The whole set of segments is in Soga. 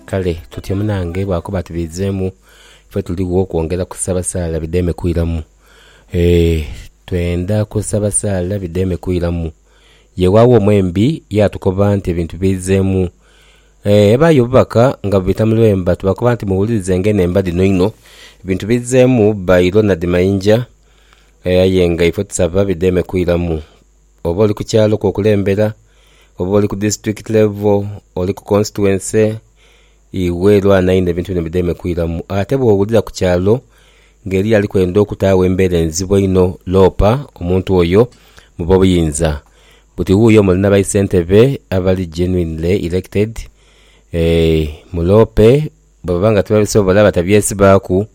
Kale tutyo munange bwakuba ati biizemu, ife tuligho kwongera kusaba saala bidheeme kwiramu. Eeh twendha kusaba saala bidheeme kwiramu. Ye waagho mwembi yaatukoba nti ebintu biizemu. Eeh ebaayo obubaka nga bubita mu lwemba tubakoba nti muwulirizenga eno emba dhino inho. Ebintu biizemu bba Ilona Dhimayinja aye nga ife tusaba bidheeme kwiramu. oba oli ku kyalo kwokulembera, oba oli ku disitulikiti levo, oli ku konsituwense, iwe lwana inho ebintu bino bideme kwiramu. Ate bwowulira ku kyalo nga eriyo ali kwenda okutaagho embera enzibu einho, loopa omuntu oyo mu bobuyinza buti wuuyo muli na baisentebe abali genuinely elected, eeh muloope Bwe baba nga tibabisobola batabyesibaaku,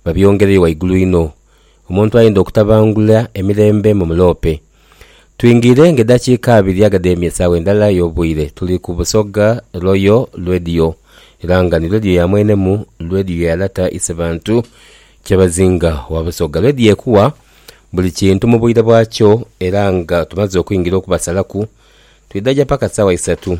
babyongereyo waigulu inho. Omuntu ayinda okutabangula emirembe mu muloope. Twingiire ng'edhakiika abiri aga dh'emye esaawa endala ey'obwire. Tuli ku Busoga Royal Radio era nga ni Radio ya mwenemu, Radio ya Lata Isebantu Kyabazinga wa Busoga. Radio ekuwa buli kintu mu bwire bwakyo era nga tumaze okwingira okubasalaku, twidha gya paka saawa isatu.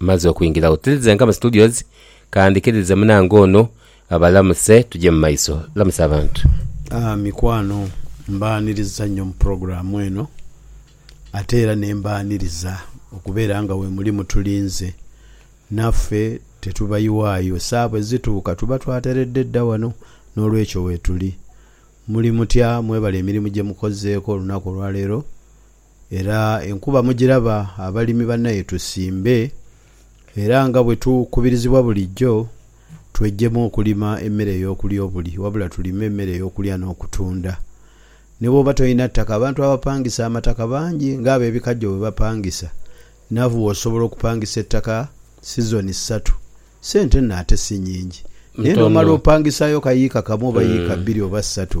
Mmaze okwingira otilize nga mu studios ka ndhikiririze munange ono abalamuse tuje mu maiso. Lamusa abantu. Mikwano mbaaniriza nnyo mu pulogulaamu eno ate era ne mbaaniriza okubeera nga wemuli mutulinze. Naffe tetubayiwaayo, saa bwezituuka tuba twateredde dda wano n'olwekyo weetuli. Muli mutya? Mwebale emirimu gye mukozeeko olunaku olwaleero? era enkuba mugiraba abalimi banaye tusimbe era nga bwetukubirizibwa bulijjo twejjemu okulima emmere ey'okulya obuli wabula tulime emmere ey'okulya n'okutunda. Ni bw'oba tolina ttaka abantu abapangisa amataka bangi ng'abebikajjo bwe bapangisa navwo osobola okupangisa ettaka sizoni ssatu ssente nno ate si nyingi naye n'omala opangisaayo ka yiika kamu oba yiika bbiri oba ssatu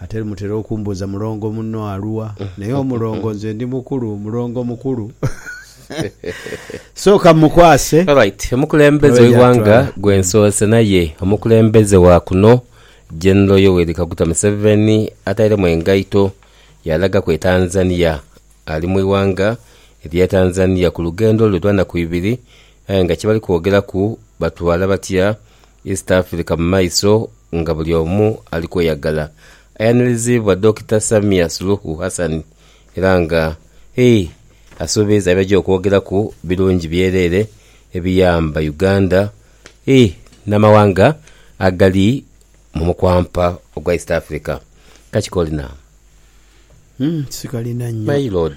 Ate mutera okumbuuza mulongo munno aluwa? Naye omulongo nze ndi mukulu, mulongo mukulu. Sooka mmukwase. Alright, omukulembeze Abe w'eighanga gy'atwala. gwe nsoose naye omukulembeze wa kuno General Yoweri Kaguta Museveni atairemu engaito yalagaku e Tanzania. Ali mu ighanga erya Tanzania ku lugendo lwe lwa naku ibiri aye nga kyebali kwogeraku batwala batya East Africa mu maiso nga buli omu ali kweyagala. Ayaniliziibwa Dokita Samia Suluhu Hassan era nga he asuubiiza byajja okwogeraku birungi byereere ebiyamba Uganda he n'amawanga agali mu mukwampa ogwa East Africa. Kakiko Lina. My lord.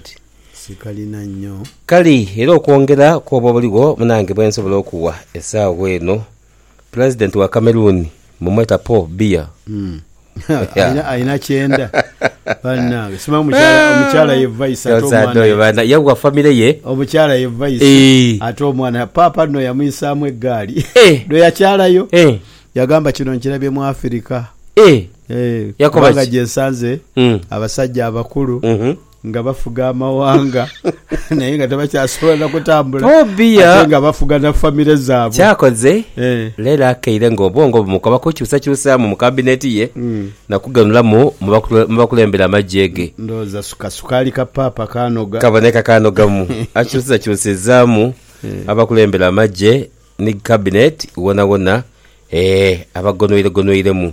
Kale era okwongera kwooba obuligho munange bwensobola okuwa esaawa eno pulezidenti wa Cameroon mumweta Paul Biya. Omusaadha oyo bana yawa family ye eeh eeh eeh. Ee, Yakoba kubanga ki? gye nsanze Mm. abasajja abakulu Mhm. nga bafuga amawanga naye nga tebakyasobola na kutambula Tobia. ate nga bafuga na famire zaabwe Kyakoze Eh. leero akeire ng'obwongo bumukoba kukyusakyusaamu mu kabineti ye Mm. na kuganulamu mu bakule- mu bakulembera amagye ge. ndowooza suka sukaali ka paapa kaanoga Kaboneka kaanogamu akyusizakyusizaamu abakulembera amagye ni kabineti wonawona eh, abagonweiregonweiremu.